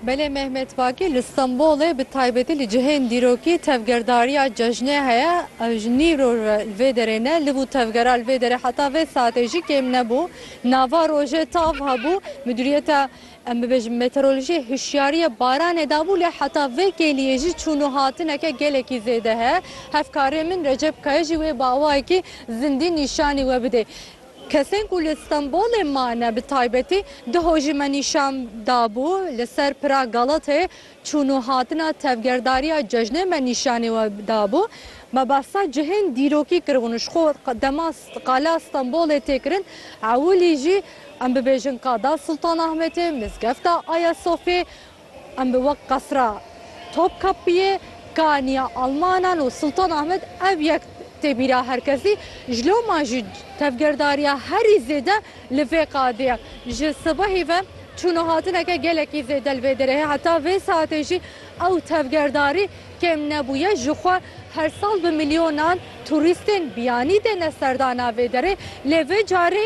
Belê Mehmet Bakî li Stenbolê bi taybetî li cihên dîrokî tevgerdariya cejnê heye. Ew ji nîv roj ve li vê derê ne. Li bû tevgera li vê derê heta vê saetê jî kêm nebû. Nava rojê tav hebû. Midûriyeta em bibêjin meteorolojiyê hişyariya baranê dabû lê heta vê kêliyê jî çûn û hatineke gelekî zêde heye. Hevkarê min Recep Kaya jî wê bi awayekî zindî nîşanî we bidê. Kesên ku li Stenbolê mane bi taybetî duho jî me nîşan dabû. Li ser pira Galatayê çûn û hatina tevgerdariya cejnê me nîşanî we dabû. Me behsa cihên dîrokî kiribûn. Ji xwe dema Qala Stenbolê tê kirin ewilî jî em bibêjin Qada Sultanahmetê, Mizgefta Ayasofyê, Em bi wek qasra Topkapiyê, Kaniya Almanan û Sultan Ahmed ev yek tê bîra her kesî. Ji loma jî tevgerdariya herî zêde li vê qadê ye. Ji sibehî ve çûn û hatineke gelekî zêde li vê derê heye. Heta vê saetê jî ew tevgerdarî kêm nebûye. Ji xwe her sal bi milyonan turîstên biyanî têne serdana vê derê. Lê vê carî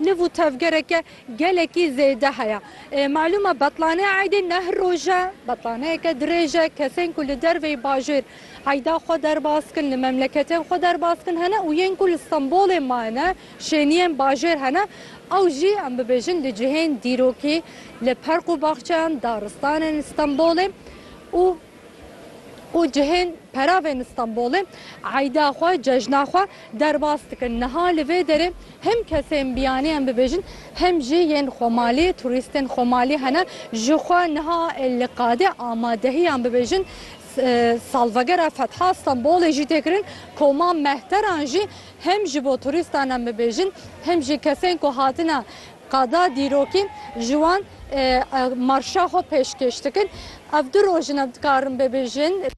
Niv û tevgereke gelekî zêde heye. Malûm e betlanê eydê ne her roj e, betlaneyeke dirêj e. Kesên ku li derveyî bajêr eyda xwe derbas dikin, li memleketên xwe derbas dikin hene û yên ku li Stenbolê mayne, şêniyên bajêr hene. Ew jî em bibêjin li cihên dîrokî, li perq û baxçeyan, daristanên Stenbolê û û cihên peravên li Stenbolê eyda xwe, cejna xwe derbas dikin. Niha li vê derê him kesên biyanî em bibêjin him jî yên xwemalî, turîstên xwemalî hene ji xwe niha li qadê amadehiyan bibêjin salvegera fetha Stenbolê jî tê kirin. Koma mehteran jî him ji bo turîstan em bibêjin him jî kesên ku hatine Qada dîrokên ji wan marşa xwe pêşkêş dikin. Ev du roj in ev dikarin bibêjin.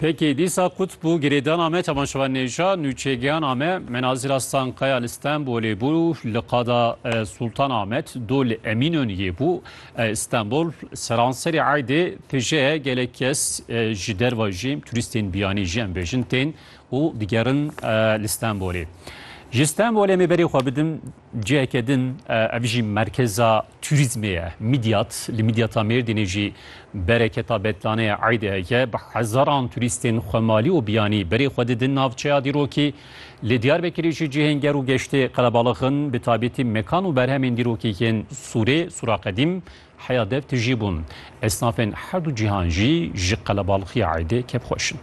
Pêkê dîsa qut bû girêdana me temaşevan nêja nûçeygehana me Menazîr Aslan Kaya li Stenbolê bû li qada Sultan Ahmet do li Emînoniyê bû Stenbol seranserê eydê tije gelek kes ji derve jî turîstên biyanî jî em bêjin tên û digerin li Stenbolê. Ji Stenbolê em ê berê xwe bidin ciheke din, ev jî merkeza turîzmê ye, Midyat. Li Midyata Mêrdînê jî bereketa betlaneyê eydê heke. Bi hezaran turîstên xwemalî û biyanî berê xwe didin navçeya dîrokî. Li Diyarbekirê jî cihên ger û geştê qelebalix in, bi taybetî mekan û berhemên dîrokî yên sûrê, sûra qedîm, Heya dev tijî bûn. Esnafên her du cîhan jî ji qelebalxiya eydê kêfxweş in.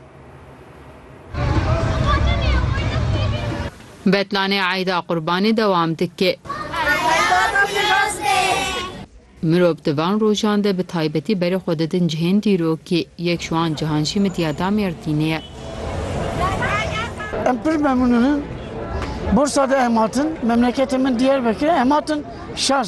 Betlanê eyda qurbanê dewam dike. Mirov di van rojan de bi taybetî berê xwe didin cihên dîrokê. Yek ji wan cihan jî midya da Mêrdînê ye. Em pir memnûn in. Bursa de em hatin. Memleketê min Diyarbekir e. Em hatin şer.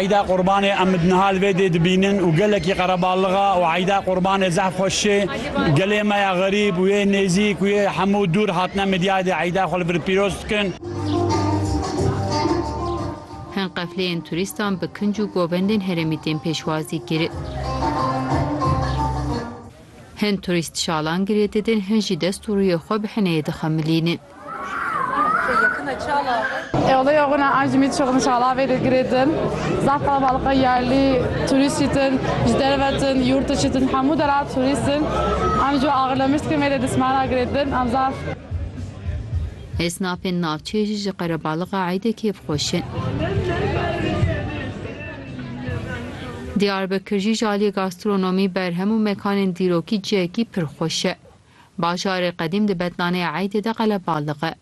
Eyda Qurbanê em di nihal vê dê dibînin û gelekî qereballixa û eyda Qurbanê zehf xwe şê. Gelê me ya xerîb û yê nêzîk û yê hemû dûr hatine midyayê dê eyda xwe li vir pîroz dikin. Hin qefleyên turîstan bi kinc û govendên herêmî tên pêşwazî kirin. Hin turîst şalan girê didin, hin jî dest û rûyê xwe bi hineyê dixemilînin. Olaya wina encîmî çi xin çalavê de girê din. Zaf qelebalixê yerlî, turîstî din, ji derve din, yurt dişî din hemû deran turîst din. Em ji Agirlemiştîkê mêrê distmana girê din. Em zaf. Esnafên navçeyê jî ji qerebalixa eydê kêf xweş in. Diyarbekir jî ji aliyê gastronomî, berhem û mekanên dîrokî cihekî pir xweş e. Bajarê qedîm di betlaneyê Eydê de qelebalixi.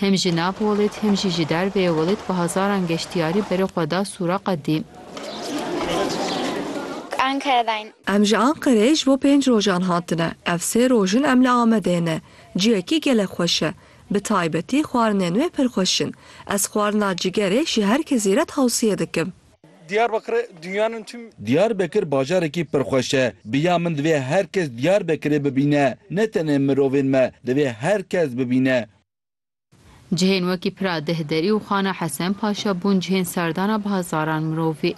Him ji nav Welêt him jî ji derveyê Welêt bi hezaran geştyarî berê xwe da sûra qedîm. Ankaredayîn. Em ji Anqereyê ji bo pênc rojan hatine. Ev sê roj in em li Amedê ne. Ciyekî gelek xweş e. Bi taybetî xwarinên wê pir xweş in. Ez xwarina cigerê ji her kesî re tewsiye dikim. Diyarbekirê dunyanın tüm. Diyarbekir bajarekî pir xweş e. Bi ya min divê her kes Diyarbekirê bibîne. Ne tenê mirovên me, divê her kes bibîne. Cihên wekî Pira Dehderî û Xana Hesen Paşa bûn cihên serdana bi hezaran mirovî.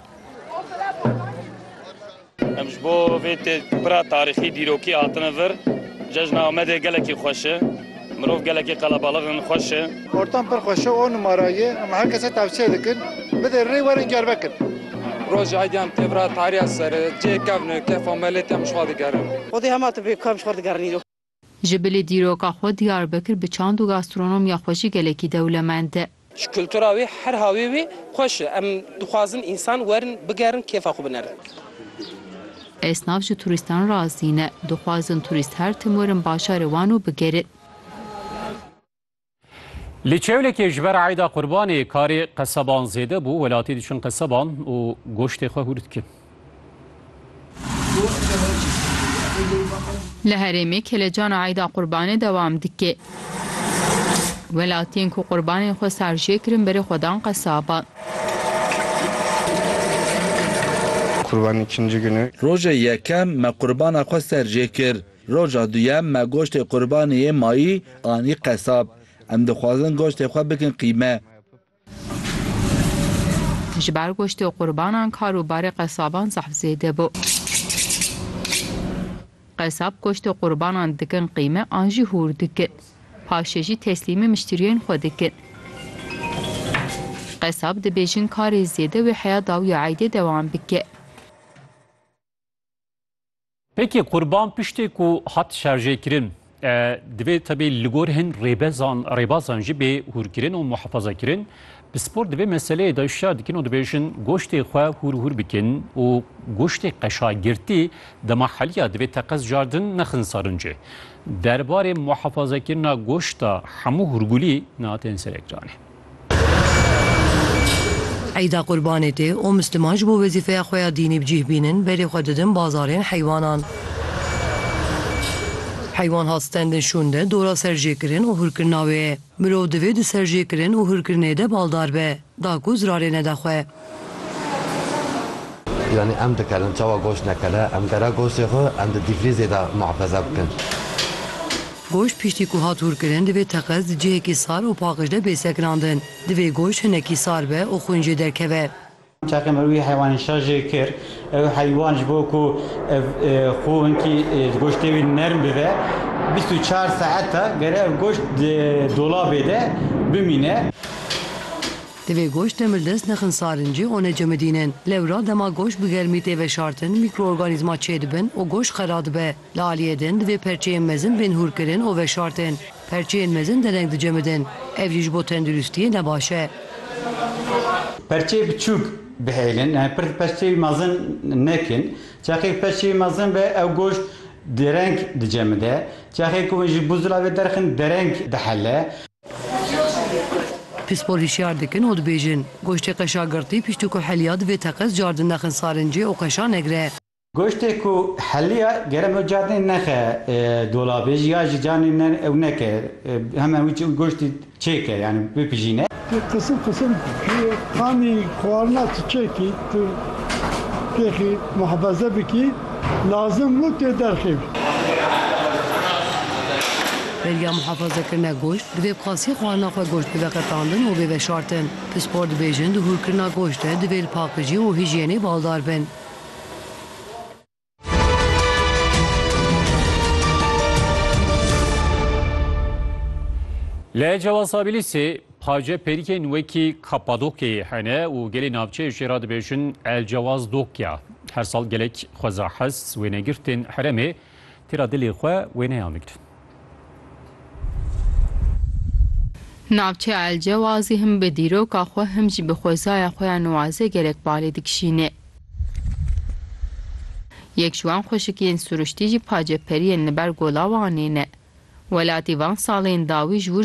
Em ji bo vê têkbira tarîxî dîrokî hatine vir. Cejna Amedê gelekî xweş e. Mirov gelekî qelebalix in, xweş e. Ortam pir xweş e, on numara ye. Em her kesê tewsiye dikin, bidê rê werin gervekin. Rojê Eydyan têvira tarîya ser e. Cihê kevn e, kefa melêt em ji xwe digerin. Xwedê hema tibê ku em ji xwe digerin îro. Ji bilî dîroka xwe Diyarbekir bi çand û gastronomiya xwe jî gelekî dewlemend e. Ji kultura wê her havê wê xweş e. Em dixwazin însan werin bigerin kêfa xwe binerin. Esnaf ji turîstan razî ne. Dixwazin turîst her tim werin bajarê wan û bigerin. Li Çewlekê ji ber Eyda Qurbanê karê qeseban zêde bû, welatî diçin qeseban û goştê xwe hûr dikin. Li herêmê kêlecana Eyda Qurbanê dewam dike. Welatiyên ku qurbanên xwe sar jê kirin berê xwe dan qesaban. Kurbanê ikinci günü. Roja yekem me qurbana xwe ser jê kir. Roja duyem me goştê qurbanê yê mayî anî qesab. Em dixwazin goştê xwe bikin qîme. Ji ber goştê qurbanan kar û barê qesaban zehf zêde bû. Qesab goştê qurbanan dikin qîme an jî hûr dikin. Paşê jî teslîmê miştiriyên xwe dikin. Qesab dibêjin karê zêde wê heya dawîya eydê dewam bike. Peki kurban piştê ku hat şerjêkirin divê tebê li gor hin rêbezan rêbazan jî bê hûrkirin û muhefazakirin bi spor divê meseleyê de şer dikin û dibêjin goştê xwe hûr hûr bikin û goştê qeşagirtî dema heliya divê teqez jardin nexin sarincê. Derbarê muhefazekirina goşta hemû hûrgulî na tên ser ekranê. Eyda Qurbanê tê û misliman ji bo wezîfeya xwe ya dînî bi cîh bînin berê xwe didin bazarên heywanan. Heywan hat stendin şûn de dora serjêkirin û hûrkirina wê ye. Mirov divê di serjêkirin û hûrkirinê de baldar be, da ku zirarê nede xwe. Yanî em dikarin çawa goşt nekere, em dera goştê xwe em di dîfrîzê de muhefeze bikin. Goşt piştî ku hat hûrkirin divê teqez di cihekî sar û paqij de bê sekinandin. Divê goşt hinekî sar be û xwîn jê derkeve. Çaxê me wî heywanên şer jê kir. Ew heywan ji bo ku ev xwe hinkî di goştê wî nerm bibe bîst û çar saete gere ev goşt di dolabê de bimîne. Divê goşt demirdest nexinsarin cih û necemidînin. Lewra dema goşt bi germî tê veşartin mîkroorganîzma çêdibin û goşt xera dibe. Li aliyê din divê perçeyên mezin bên hûrkirin û veşartin. Perçeyên mezin dereng dicemidin. Ev jî ji bo tenduristiyê ne baş e. Perçeyê biçûk bihêlin yani pir di perçeyê mezin nekin. Çaxê perçeyê mezin be ew goşt dereng dicemide. Çaxê ku hûn ji bûzula ve derxin dereng dihele. Pispor hişyar dikin û dibêjin, goştê qeşa girtî piştî ku heliya divê teqez cardin nexin sarincê û qeşa negre. Goştê ku heliya gerem ew cardinê nexe dolabê jî ya jî canê ne ew neke heme wî çi goştî çêke yanî bipijîne. Tu qisim qisim qanî xwarina tu çêkî tu têxî muhefeze bikî lazim bû tê derxî bikî. Belgeya muhafazekirine goşt, divê bi qasî xwarina xwe goşt bibe qetandin û bê veşartin. Pispor dibêjin di hûrkirina goşt de divê li pakijî û hijyênê baldar bin. Li Cewazabîlîsê pace pêrikên wekî Kapadokyayê hene û gelê navçeyê jê re dibêjin El Cewaz Dokya. Her sal gelek xweza hest wênegirtên heremê Tira dilê xwe wêneyan bigirin. Navçeya Elcewazî him bi dîroka xwe him jî bi xwezaya xwe ya nuwaze gelek balê dikişîne. Yek ji wan xweşikiyên siruştî jî paceperiyên li ber gola Wanê ne. Welatî van salên dawî ji wir